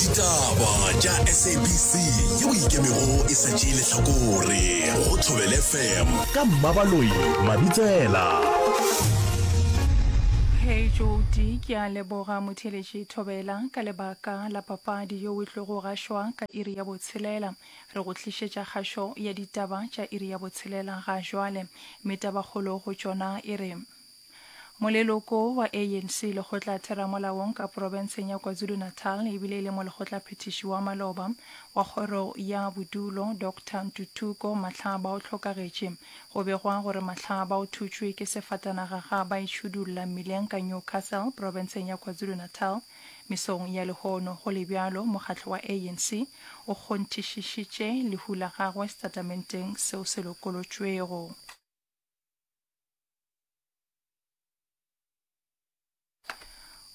ditaba tša sabc yeo ikemego e sa tšee lehlakore go thobele fm ka mmabaloi mabitsela Hey Jodi, ke a leboga motheletši Thobela ka lebaka la papadi yo o tlogo gašwa ka iri ya botshelela. Re go tlišetša kgašo ya ditaba tša iri ya botshelela ga jwale. Mme tabakgolo go tšona e re. Moleloko wa ANC lekgotla theramolaong ka porobenseng ya KwaZulu-Natal e bile e le molekgotlaphethiši wa maloba wa kgoro ya bodulo Doctor Ntuthuko Matlhaba o hlokagetše. Go begwa gore Matlhaba o thutšwe ke sefatanaga ga ba itšhudulla mmileng ka Newcastle porobenseng ya KwaZulu-Natal mesong ya lehono. Go le bjalo, mokgatlo wa ANC o kgonthišišitše lehu la gagwe setatementeng seo se lokolotšwego.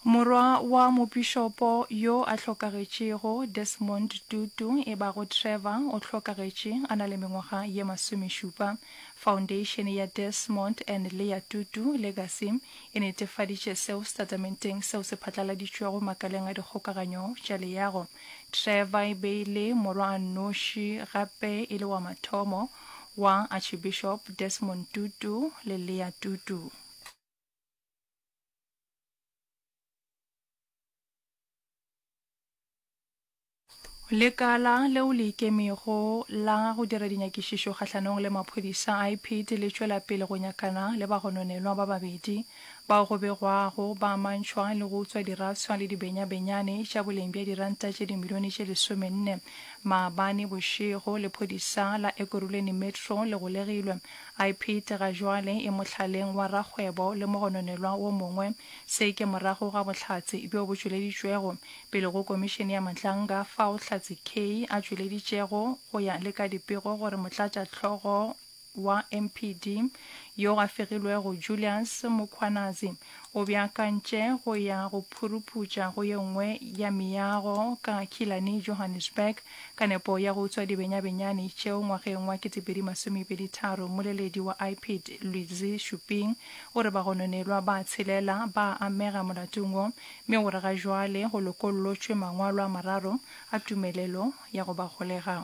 Morwa wa mopišopo yo a hlokagetšego, Desmond Tutu, e bago Trevor, o hlokagetše a na le mengwaga ye masomešupa. Foundation ya Desmond and Leah Tutu Legacy e netefaditše seo setatementeng seo se phatlaladitšwego makaleng a dikgokaganyo tša leago. Trevor e be e le morwa a nnoši gape e le wa mathomo wa Archbishop Desmond Tutu le Leah Tutu. Lekala leo le ikemego la go dira dinyakišišo kgahlanong le maphodisa a Ipit le tšwela pele go nyakana le bagononelwa ba babedi. Bao go begwago ba amantšhwa le go utswa diraswa le dibenyabenyane tša boleng bja diranta tše dimilione tše lesomenne maabane bošego. Lephodisa la Ekurhuleni Metro le golegilwe. Ipid ga jwale e mohlaleng wa rakgwebo le mogononelwa wo mongwe. Se ke morago ga bohlatse bjo bo tšweleditšwego pele go komišene ya Madlanga fao Hlatse Kay a tšweleditšego go ya le ka dipego gore motlatšahlogo wa MPD yo a fegilwego Julius Mukhwanazi o beakantše go ya go phuruputša go ye nngwe ya meago ka Killarney, Johannesburg, ka nepo ya go utswa dibenyabenyane tšeo ngwageng wa 2023. Mmoleledi wa IPID, Lwizi Shuping, o re bagononelwa ba tshelela ba a amega molatong wo mme o re ga jwale go lokollotšwe mangwalo a mararo a tumelelo ya go ba golega.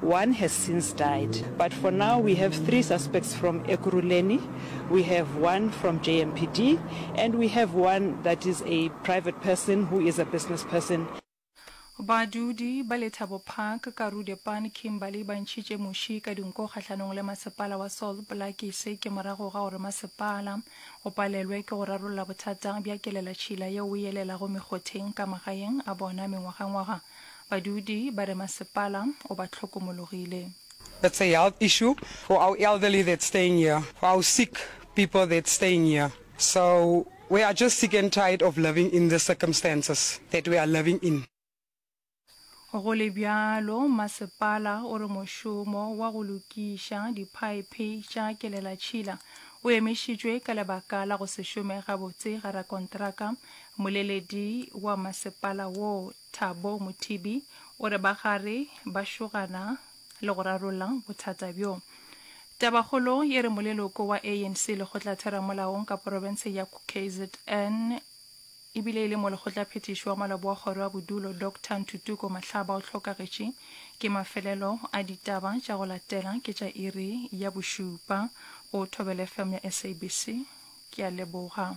One has since died but for now we have three suspects from Ekurhuleni, we have one from JMPD and we have one that is a private person who is a business person. Badudi ba Lethabo Park, Karoo Depan, Kimberley ba ntšhitše muši ka dinku kgahlanong le masepala wa Salt Blackie. Se ke morago ga gore masepala o palelwe ke go rarolla bothata bja kelelatšhila yeo e elelago mekgotheng ka magaeng a bona mengwagangwaga. Badudi ba re masepala o ba hlokomologile. That's a health issue for our elderly that's staying here, for our sick people that's staying here. So we are just sick and tired of living in these circumstances that we are living in. Go le bjalo, masepala o re mošomo wa go lokiša diphaephe tša kelelatšhila o emišitšwe ka lebaka la go se šome gabotse ga rakontraka, moleledi wa masepala woo. Thabo Mothibi o re ba gare ba šogana le go rarolla bothata bjo. Tabakgolo e re moleloko wa ANC lekgotlatheramolaong ka porofenseng ya KZN e bile e le molekgotlaphethiši wa maloba wa kgoro ya bodulo Doctor Ntutuko Mahlaba o hlokagetše ke mafelelo a ditaba tša go latela ke tša iri ya bošupa go Thobela FM ya SABC. Ke a leboga.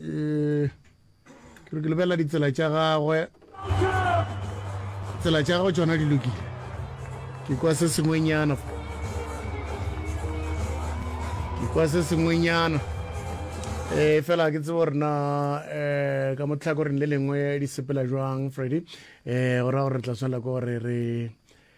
eh, ke re ke lebelela ditsela tša gagwe tsela tša gagwe tsona di lokile ke kwa se sengwenyana ke kwa se sengwenyana e fela ke tsebo rena um ka motlhakoreng le lengwe di sepela jwang freddy um go raya gore re tla tshwanela ke gore re